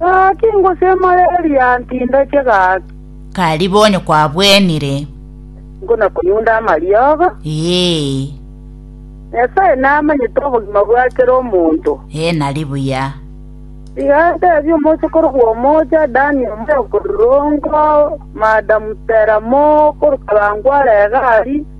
Gaki ngosemereria ntindache gaki. Kari bonyo kwabwenire. Nkona konyunda amariogo. Ee. Nyasae namanyete obogima bwa kera omonto. Ee nari buya. Tiga ntebie omosokoro bw'omoocha Dani omaya okorirongwa, Madam Tera Moore, okorokwa Rangware Egari,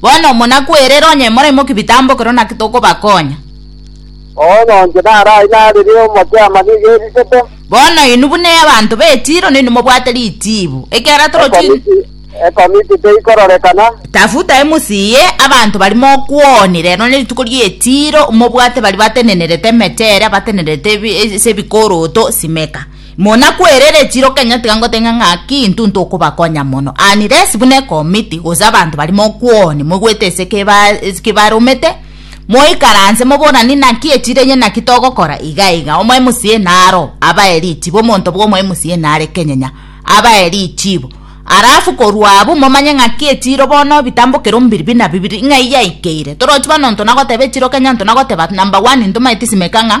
Bono monakwerere onye moraimokia ebitambo ekero naki tokobakonya. Bono inche narai narire omokia ama nigo eriseto. Bono inwe buna abanto be Tiro nainwe mobwate ritibu, ekiagera torochi Ekomiti, ekomiti teikororekana. Tafuta emusi eye abanto bari mokwoni rero nerituko rie Tiro, mobwate baria batenenerete emechera, batenenerete ebi- ase ebikoroto, simeka. Muna kwerere echiro kenya tiga ngoteng'e ng'aki intwe intwe okobakonya mono, unless buna ekomiti gose abanto baria mokwoni moigwete ase keba kebaromete, moikaranse moborane naki echiro enye naki togokora iga iga, omoe MCA naro abae richibo, omonto bwa omoe MCA nare kenyenya abae richibo, alafu korwa abwo momanye ng'aki echiro bono bitambokere ombiri buna bibiri ng'ai yaikeire, torochi bono nto nagoteba echiro kenya nto nagoteba number one ntomaeti simeka ng'a.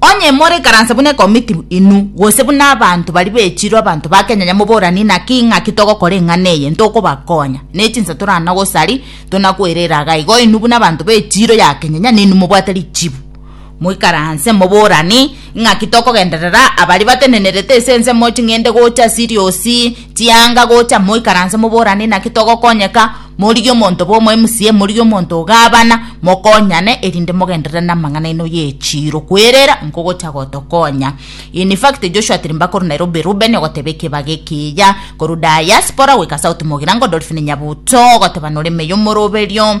Onye morikaranse buna ekomiti inwe, gose buna abanto baria bechirwe abanto ba Kenya nyamwe boranie naki ng'aki togokora eng'ana eye ntokobakonya, ne chinsa toranagosarie tonakoirera iga igo inwe buna abanto bechirwe ya Kenya nyane inwe mobwate richibu. Moikaranse moboranie ng'aki tokogenderera abaria batenenerete ase ensemo ching'ende gocha Siriosi, Tianga gocha, moikaranse moborane naki togokonyeka, morigie omonto bwa omwemusie, morigie omonto o gavana, mokonyane, erinde mogenderere namang'ana aino y'echiiro, kwerera nkogocha gotokonya. In fact, Joshua Tirimba korwa Nairobi, Rubeni ogoteba ekebago ekiya, korwa Diaspora goika South Mogirango, Dolphine Nyabuto ogoteba noremeye omoroberio,